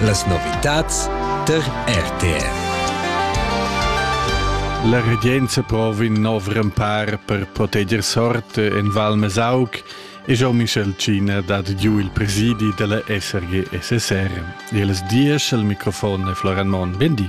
Las novitads tar RTR. La regenza prova in nov rempar per proteger sort en Val Mesauc e Jean-Michel China dat giu il presidi della SRG SSR. E les dies al microfon è Florian Mon. Bendi.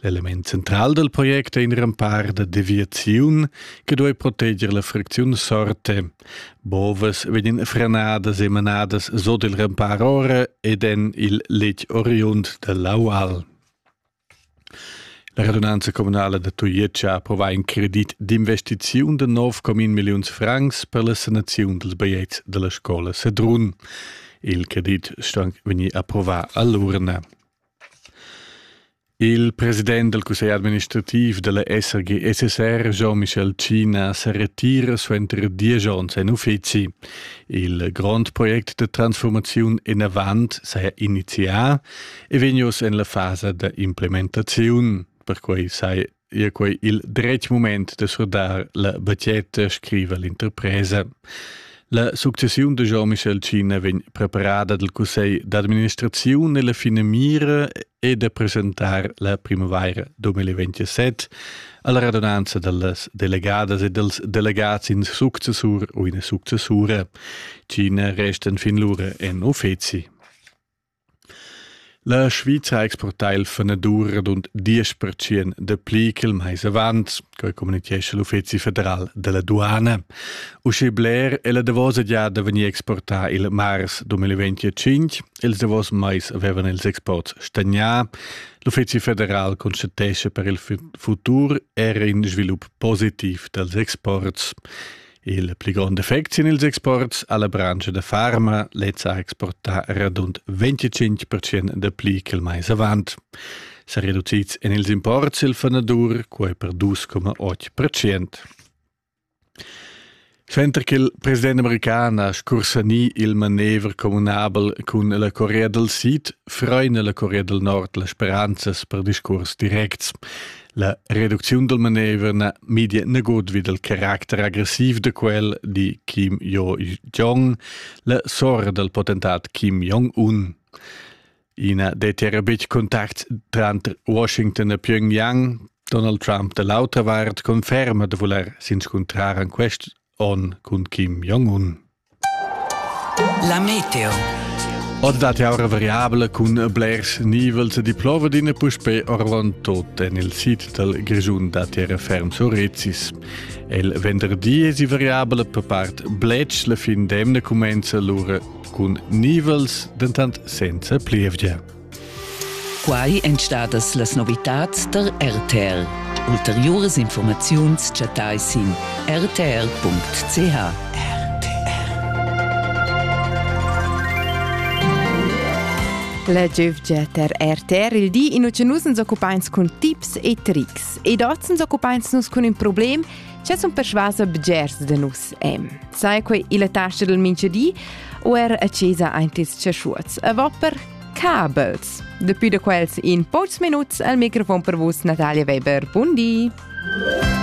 L'element central dal project è in rempar da deviaziun che duai proteger la fricziun sorte. Bovas vegnan frenadas e manadas sot il rempar ora ed en il letg oriund da l'aual. La radunanza communala da Tujetsch ha approvà in credit d'investiziun de 9,1 milliuns francs per la sanaziun dels baiets de la scola Sedrun. Il credit sto anc vegnir approvà all'urna. Il president dal cussegl administrativ da la SRG-SSR Jean-Michel Tschina sa retira suenter diesch onns en uffizi. Il grond project da transformaziun enavant saja inizià e vegn oz en la fasa da implementaziun. Perquai sai è quei il dretg moment de surdar la batgetta, scriva l'interpresa. La successiun de Jean-Michel Cina vegn preparada dal Cussegl d'administrazione e la fine mira è de presentar la primavaira 2027 alla radunanza dellas delegadas e dels delegats in successur o in successura. Cina resta fin lura en uffizi. La Svizra ha exportà il fanadur radund diesch pertschient dapli ch'il mais avant, quai communitgescha l'Uffizi federal da la duana. Uschè bler è la davosa giada vegnì exportà il mars 2025. Ils davos mais avevan ils exports stagnà. L'Uffizi federal constatescha per il futur era in svilup positiv dals exports. Il pli grond effect sin ils exports ha la branscha da farma lezza ha exportà radund 25% da pli che il mais avant. Sa reducids en ils imports il fanadur quai per 2,8%. Senter che il president american ha scursanì il manever communabel cun la Corea del Sid, freina la Corea del Nord las speranzas per discurs directs. La reducziun dal manever na midia nagut vi dal caracter agressiv da quel, di Kim Jo-jong, la sora dal potentat Kim Jong-un. I na dettia betg contact tranter Washington e Pyongyang. Donald Trump da l'autra vart conferma da vulair s'inscuntrar en quest onn cun Kim Jong-un. La meteo. Od dat aura variabla cun blers nivels di plovadina puspe orvan tot en il sit dal Grischun da terra ferm Surrezis. El venderdi es variabla per part blech la fin d'emna comenza lura cun nivels dentant senza plievgia. Quai èn stadas las novitads tar RTL. Ulteriuras informaziuns chattai sin rtl.ch. La giövgia ter RTR il di in uche nus uns occupains cun tips e trics ed oz uns occupains nus cun ün problem che sun persuasa bgers da nus em. Sai quei illa tascha del mincha di? O er a chesa aint ils chaschuots? A vopper, Kabels. Depuis da quels in pocs minuts al microfon per vus Natalia Weber. Bundi. Bundi.